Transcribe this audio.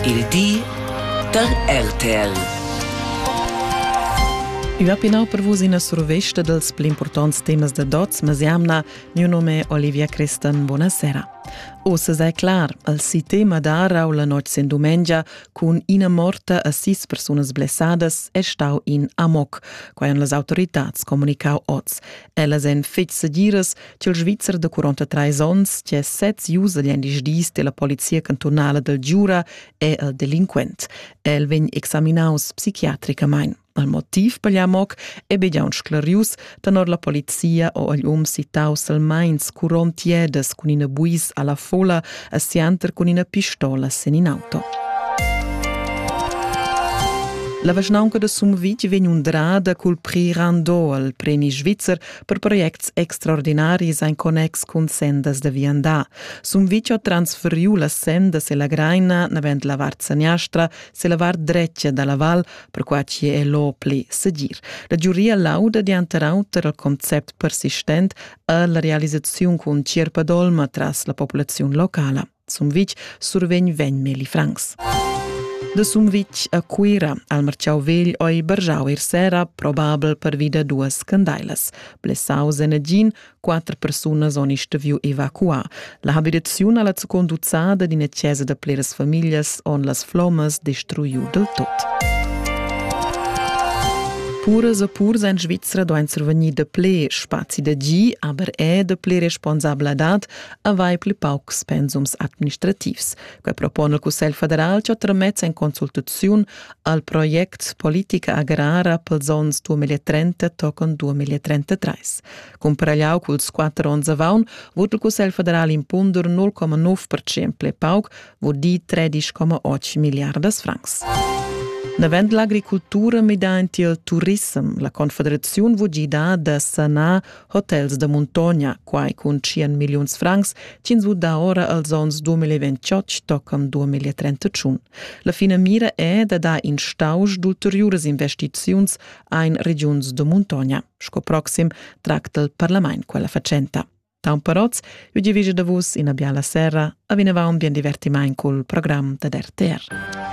Il di da RTL. I va pinau per vus ina survesta dels pli importants temas da dots, mas jamna, mio nome è Olivia Crestan, buonasera. Ossa sei clar, al si tema d'arau la notg sin dumengia cun ina morta a sis persunas blessadas è stau in amok, quai han las autoritats comunicau oz. Ellas en fetg segiras, ch'il Svizzer da 43 onns, che sez usa gli disdis della polizia cantonala del Giura, è el delinquent. El vegn examinaus psichiatricamain. Al motiv per l'amoc è be giaun sclarius, tenor la polizia o agl um sitaus al meins curont tiedas cun ina buis alla fola a sianter cun ina pistola sen in auto. La vischnaunca de Sumvitg vegn undrada cul prix Rando al premi svizzer per projects extraordinaris en connex cun sendas da viandar. Sun vicio transferiu las sendas e la graina navent la vart saniastra se la vart drecia dalla val, per qua ci è lo pli segir. La giuria lauda dianter auter al concept persistent alla realizzazione cun Cirpa Dolma tras la popolazione locala. Sumvitg survegn vegn Meli Franks. De Sumvitg a Cuira al marciau vegl oi bargiau ir sera, probabel per vida duas candailas. Blessaus en gin, quattro persunas oni steviu evacuar. La habitazione alla conduzzada d'ina chiesa de pleras familias on las flomas destruiu del tot. Puras e purs en Svizzera doin survegnir de ple spazi de gi, aber è de ple responsabladad avair pli paucs pensums administrativs. Quai propone il Cussegl federal che tramets en consultaziun al project Politica agrara pels ons 2030 tocan 2033. Cumpragliau culs quatter ons avaun, vot il Cussegl federal impunder 0,9% ple pauc, vot di 13,8 miliardas francs. Navend l'agricultura midant il turissem, la Confederaziun vò gidar da sanar Hotels da muntogna, quai cun 100 milliuns francs, ginzu da ora als onns 2028 toccam 2031. La finamira è da dar in stausch d'ulteriuras investiziuns ein regiuns da muntogna. Sco proxim tracta il parlament quella facenta. Taumperoz, eu divige da vus ina biala serra, a vinavant bien divertiment col program da RTR.